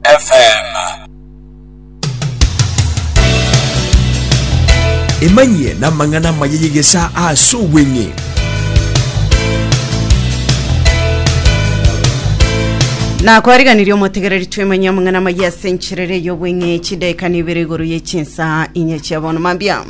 FM. Emanyie namang'ana amaya y'egesaa aase obweng'e. nakwariganirie omotegereri twemanyia amang'ana amaya ase encherere y'obweng'e chidaeka nibere igoro ye chinsa inye chia bono mambia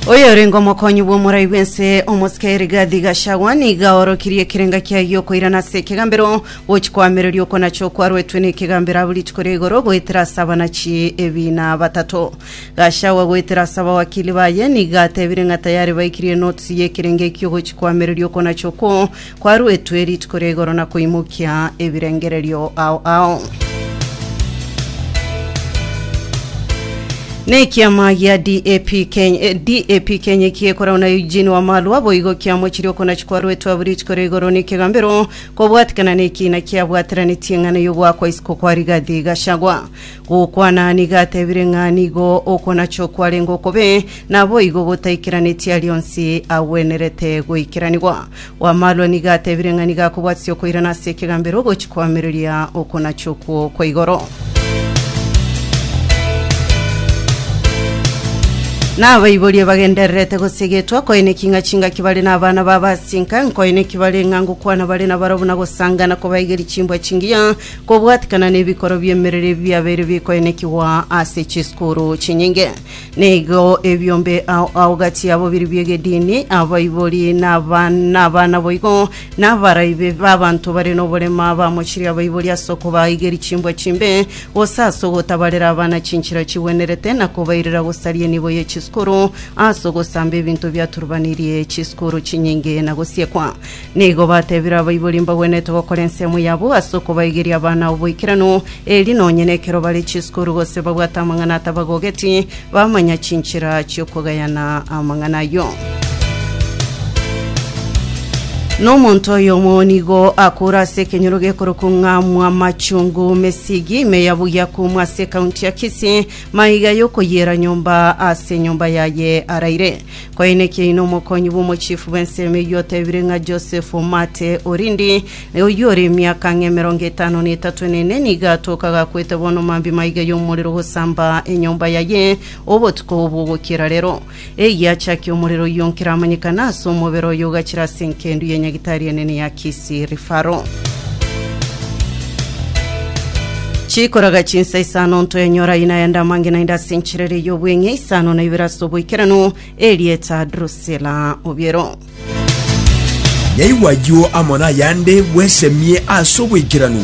Oyorenge omokonyi bw'omorai bw'ense omosike Rigathi Gachagua nigo aorokirie ekerenga kiaye giokoirana ase ekegambero gochia koamereria okonacha okwaruetwe na ekegambero abwo rituko ria igoro goetera ase abanachi ebina batato. Gachagua goetera ase abawakili baye nigo atebire ng'a tayari baikirie enotisi y'ekerenga ekio gochia koamereria okonacha okwo Kwaruetwe rituko ria igoro na koimokia ebirengererio ao ao. Nekiama gia DAP Kenya, eh, DAP Kenya eki ekorau na Eugene Wamalwa boigo kiamochirie okonachi kwaruetwe abwo rituko ria igoro nekegambero kobwatikana nekina kiabwateranetie ng'ana yogoakwa isiko kwa Rigathi Gachagua. Gokwana nigo atebire ng'a nigo okonachi okwarenge okobe naboigo gotaikeranetie arionsi agwenerete goikeranigwa. Bw'amarwa nigo atebire ng'a nigo akobwatisia okoirana ase ekegambero ogochi koamereria okonacha okwo kwa igoro. Nabaiborie bagendererete gosegetwa, nkoe neki ng'a chingaki bare nabana babo ase enka, nkoe neki bare ng'a ngokwana bare nabarabwo na gosanga na kobaegeria chimbwa chingiya, kobwatikana nebikoro bi'emerero ebi biabeire bikoenekigwa ase chisukuru chinyinge. Nigo ebiombe ao ao gati yabo biri bi'egedini, abaibori, na aba- na abana boigo, na abaraibi b'abanto bare noborema, bamochirie abaibori ase okobaigeria chimbwa chimbe, gose ase ogotabarera abana chinchera chigwenerete, na kobairera gosaria enibo ye chisukuru, ase ogosamba ebinto biaturubanirie chisukuru chinyinge na gosiekwa. Nigo batebire abaibori mbagwenerete gokora ensemo yabo ase okobaigeria abana oboikeranu, eeri nonye nekero bare chisukuru gose babwate amang'ana atabagogeti, bamanya chinchera chi'okogayana amang'ana ayio. Nomonto oyomo nigo akoore ase ekenyoro gekorokwa ng'a Mwamachungu mesigi ime ya buya kumwa ase ekaunti ya Kisii maiga yokoyiera nyomba ase nyomba yaye araire. Kwaineki aino omokonyi bw'omochiefu bw'ensemo eyio otebire ng'a Joseph Omate Orindi, na oyio ore emiaka ng'a emerongo etano na etato na ene, nigo atoke agakwete bono mambia maiga y'omorero gosamba enyomba yaye obotuko obo bw'ogokiera rero. Eyio achakia omorero oyio nkeramanyekana ase omobere oye ogachira ase enkendu ye nyagitari enene ya Kisii. Sirifaro. Chikoraga chinsa isano ntoenyora ina yende amangina inde ase enchirere y'obweng'e isano na ibere ase oboikeranu erieta Drusilla Obiero. Yaigwa ayio amo nayande bwesemie ase oboikeranu.